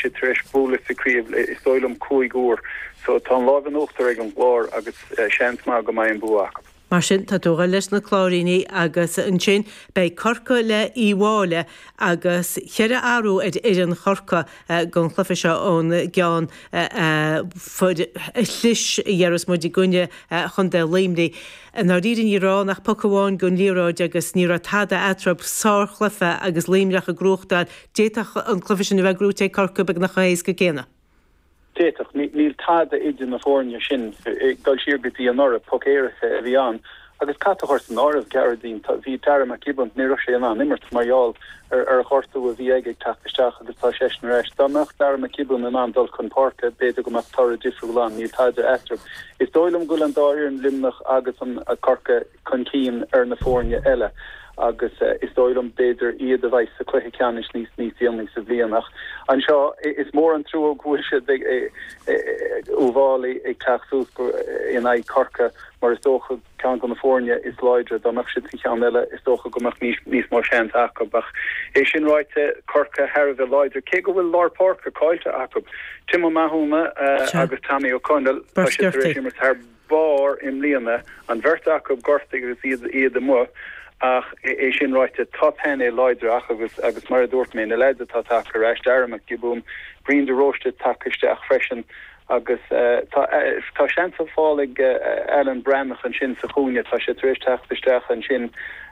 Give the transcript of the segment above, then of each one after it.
sé tar éis bualadh sa chraobh le, is dóigh liom, cúig uair. So tá an láimh in uachtar ag an gClár agus seans maith go mbeidh an bua acu. Mar sin, tá tú ag goil leis na Cláirínigh agus ansin beidh Corcaigh le Uíbh Fhailí agus cheithre athrú ar fhoireann Chorcaighe gon chluiche seo ón gceann a faoi dheireadh, déarfaidh muid, i gcoinne Chontae Luimnigh. I ndáiríre ní raibh ann ach poc amháin gon liathróid agus ní raibh tada eatarthub. Sár chluiche agus Luimneach ag gnóthachtáil. D'fhéadfadh an cluiche sin a bheith gnóthaithe ag Corcaigh beagnach chomh héasca céanna. D'fhéadfadh. Níl tada idir na foirne sin. Dul siar go dtí anuraidh, poc éirice a bhí ann. Agus caithfidh tú a chur san áireamh, Gearóidín, bhí Darragh Mac Giobúin, ní raibh sé in ann imirt mar gheall ar ghortú a bhí aige ag teacht isteach agus tá seisean ar ais. Dá mbeadh Darragh Mac Giobúin in ann dul chun páirce, b'fhéidir go mbeadh toradh difriúil ann. Níl tada eatarthu. Is dóigh liom go bhfuil an dá fhoireann, Luimneach agus an Corcaigh, chun cinn ar na foirne eile agus is dóigh liom b'fhéidir iad a bheidh sa chluiche ceannais níos déanaí sa bhliain ach anseo is mór an trua go bhfuil siad Uíbh Fhailí ag teacht suas in aghaidh Corcaigh mar is dócha ceann de na foirne is láidre dá mbeadh siad sa cheann eile is dócha go mbeadh níos níos mó seans acu ach é sin ráite Corcaigh thar a bheith láidir cé go bhfuil lár páirce caillte acu Tim O'Mahony agus Tommy O'Connell tá siad tar éis imirt thar barr i mbliana. An bheirt acu gortaithe agus iad amuigh ach é sin ráite, tá painéal láidir acu agus mar a dúirt mé, na leaids atá tagtha ar ais, Darragh Mac Giobúin, Brian de Róiste tagtha isteach freisin agus tá seans ar fáil ag Alan Breathnach ansin sa chúinne, tá sé tar éis teacht isteach ansin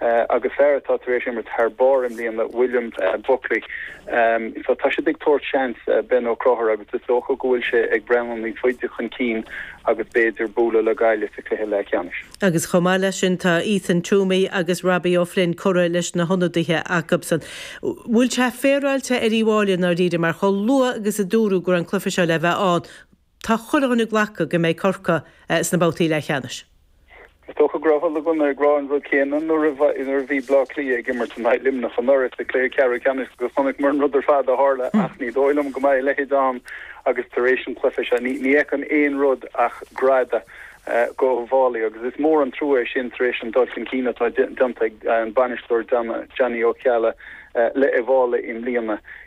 agus fear atá tar éis imirt thar barr i mbliana, William Buckley. Tá siad ag tabhairt seans, Ben Ó Conchúir, agus is dócha go bhfuil sé ag breathnú níos faide chun cinn. agus b'fhéidir bualadh le Gaillimh sa chluiche leathcheannais. Agus chomh maith leis sin tá Ethan Twomey agus Robbie O'Flynn curtha leis na hionadaithe acubsan. Bhfuil sé féaráilte ar Uíbh Fhailí i ndáiríre mar chomh luath agus a dúradh go raibh an cluiche seo le bheith ann tá chuile dhuine glactha go mbeidh Corcaigh sna babhtaí leathcheannais. Is dócha go raibh chuile dhuine ag rá an rud céanna nuair a bhí Bleá Cliath ag imirt in aghaidh Luimneach anuraidh sa chluiche ceathrú ceannais agus chonaiceamar an rud ar fad a tharla ach ní dóigh liom go mbeidh a leithéid ann tar éis an chluiche seo. Ní fheicim aon rud ach greadadh go Uíbh Fhailí agus is mór an trua é sin tar éis an dul chun cinn atá déanta ag an bainisteoir Johnny Ó Ceallaigh le Uíbh Fhailí i mbliana.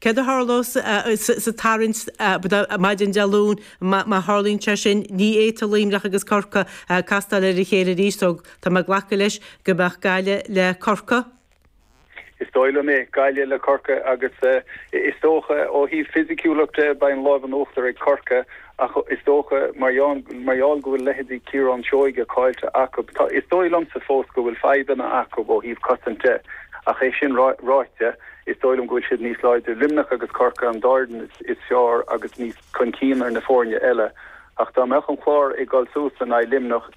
Céard a tharlóidh sa tarraingt maidin Dé Luain má tharlaíonn sé sin? Ní fhéadfadh Luimneach agus Corcaigh castáil ar a chéile arís so tá mé ag glacadh leis go mbeadh Gaillimh le Corcaigh. Is dóigh liom é, Gaillimh le Corcaigh agus is dócha ó thaobh fisiciúlacht de beidh an láimh in uachtar ag Corcaigh Ach is dócha, mar gheall go bhfuil leithéidí Ciarán Seoige caillte acu, tá, is dóigh liomsa fós go bhfuil fadhbanna acu ó thaobh cosaint de. Ach é sin ráite, is dóigh liom go bhfuil siad níos láidre. Luimneach agus Corcaigh an dá dhream is fearr agus níos chun cinn ar na foirne eile. Ach dá mbeadh an Clár ag dul suas in aghaidh Luimneach,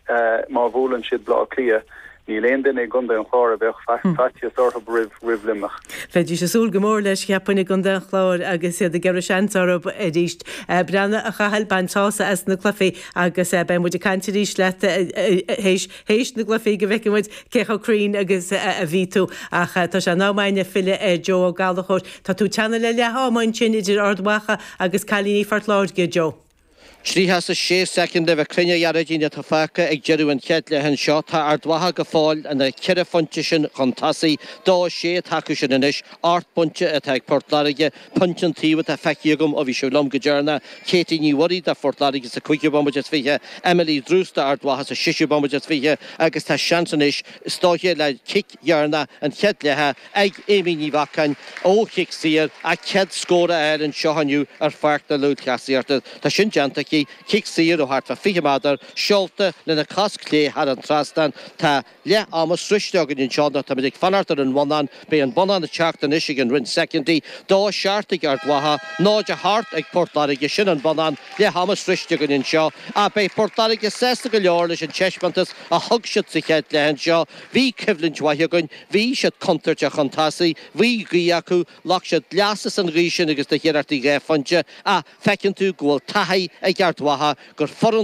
má bhuaileann siad Bleá Cliath, Níl aon duine i gContae an Chláir a bheadh faitíos orthu roimh roimh Luimneach. Bheidís ag súil go mór leis, cheapfainn, i gContae an Chláir agus iad ag iarraidh seans orthu arís. Breá, a Chathail, baint sása as na cluichí agus beidh muid ag caint arís leat théis théis na gcluichí go bhfeicfidh muid cé chomh cruinn agus a bhí tú. Ach tá sé in am againne filleadh ar Joe Ó Gallchóir. Tá tú teannadh le leath ama ansin idir Ard Mhacha agus cailíní Phort Láirge, Joe. Tríocha is a sé soicind le bheith cruinn a Ghearóidín atá fágtha ag deireadh an chéad leath anseo. Tá Ard Mhacha go fóill ina ceithre phointe sin chun tosaigh. Dó a sé atá acu sin anois, ocht bpointe atá ag Port Láirge. Pointe an taobh atá feicthe againn ó bhí sibh liom go deireanna, Katie Ní Mhuirí do Phort Láirge sa cúigiú bomaite is fiche, Emily Druce do Ard Mhacha sa seisiú bomaite is fiche agus tá seans anois is dóiche le cic dheireanach an chéad leatha, ag Aimee Ní Mhacáin ó chic saor, a céad scór a fháil anseo inniu ar Pháirc na Lúthchleasaíochta. Tá sin déanta aici, cic saor ó thart fá 20 méadar, seolta lena cos chlé thar an trasnán. Tá leath ama sroichte againn anseo, nó táimid ag fanacht ar an bhonnán. Beidh an bonnán ag teacht anois i gcionn roinnt soicinnti. Dó a seacht ag Ard Mhacha, 0 a hocht ag Port Láirge. Sin an bonnán, leath ama sroichte againn anseo, ach beidh Port Láirge sásta go leor leis an taispeántas a thug siad sa chéad leath anseo. Bhí coimhlint mhaith againn. Bhí, siad contúirteach chun tosaigh. Bhí, gaoth acu. Ghlac siad leas as an ghaoth sin agus do iarrachtaí dhá phointe. Ach feiceann tú go bhfuil taithí ag Ard Mhacha, gur foireann